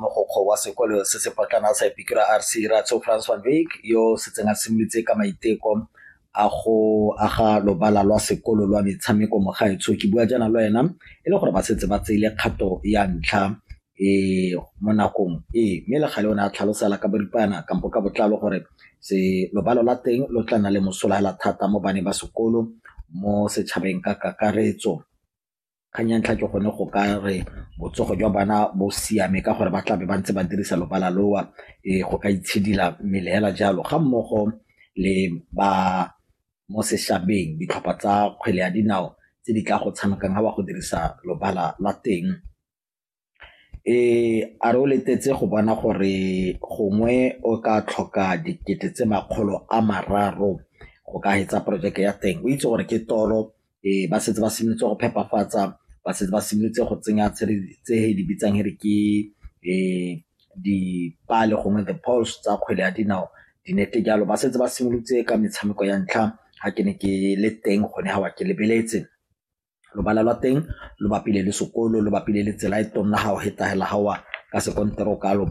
Mogokgo wa sekolo se se potlana sa Epikura RC Ratso Frans van Wyk yo setseng a simolotse ka maiteko a go aga lobala lwa sekolo lwa metshameko mo gaetsho ke bua jaana le wena e le gore ba setse ba tseile kgato ya ntlha e mo nakong e mme le gale o ne a tlhalosela ka boripana kampo ka botlalo gore se lobalo la teng lo tla na le mosola hela thata mo bane ba sekolo mo setšhabeng ka kakaretso Kgang ya ntlha ke gone go ka re botsogo jwa bana bo siame ka gore ba tlabe ba ntse ba dirisa lobala loo go ka itshidila mmele fela jalo ga mmogo le ba mo sešhabeng, ditlhopha tsa kgwele ya dinao tse di tla go tshamekang ga ba go dirisa lobala la teng. a re o letetse go bona gore gongwe o ka tlhoka dikete tse makgolo a mararo go ka hetsa projeke ya teng o itse gore ke toro um ba setse ba simolotse go phepafatsa ba setse ba simolotse go tsenya tse di bitsang re ke um dipale gongwe the poles tsa kgwele ya dinao dinete jalo ba setse ba simolotse ka metshameko ya ntlha ga ke ne ke le teng gone ga wa ke lebeletse lobala lwa teng lo bapile le sekolo lo bapile le tsela e tona ha o feta hela ha o wa ka sekonteraka lo .